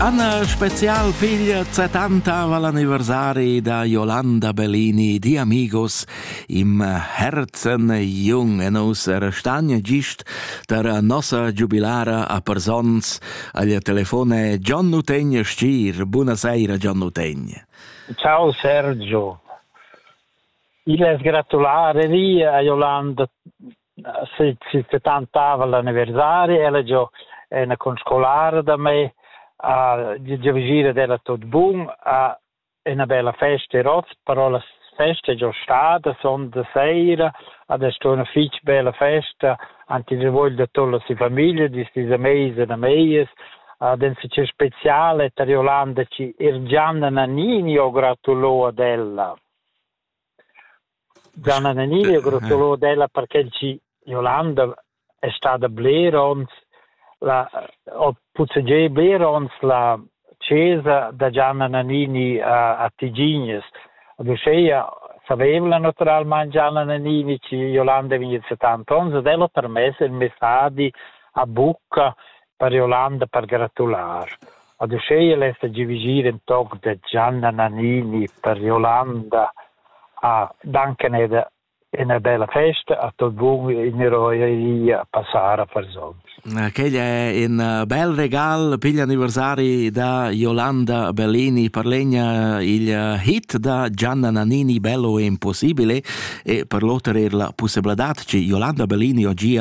Anna Spezial figlia 70 va l'anniversari da Yolanda Bellini di Amigos im Herzen jung e nous restagna gist tar nossa giubilara a Persons agl telefone Gian Nutegn Stir. Buonasera Gian Nutegn. Ciao Sergio. Il es gratulare via a Yolanda si, si settantava l'anniversari, ella giò ena conscolara da me, a gire della tot bun, a ena bella festa, roz, però la festa è già stata, son de sera, adesso è una fitch bella festa, anche se voglio da tutta la famiglia, di sti mese da meies, ad en si speciale, tariolando ci Irgianna Nannini ho gratulo ad ella. Gianna Nenilia Grottolo d'ella perché chi Jolanda es stada bler ons la ho puzzegià bler ons la chesa da Gianna Nannini a a Tigignes. Ad uscheia savevla natüralmaing Gianna Nannini chi Jolanda vegnet 70 ons ed el ho permess il messadi a bucca per ir Ollanda per gratular. Ad uschea lessa giavigir ün toc da Gianna Nannini per ir Ollanda a dancan eda ina bella festa a tot bun in roeria passar a Farzons. Quel è un bel regal per l'anniversari da Yolanda Bellini per legna il hit da Gianna Nannini Bello è impossibile e per l'otter er la possibilità che Yolanda Bellini oggi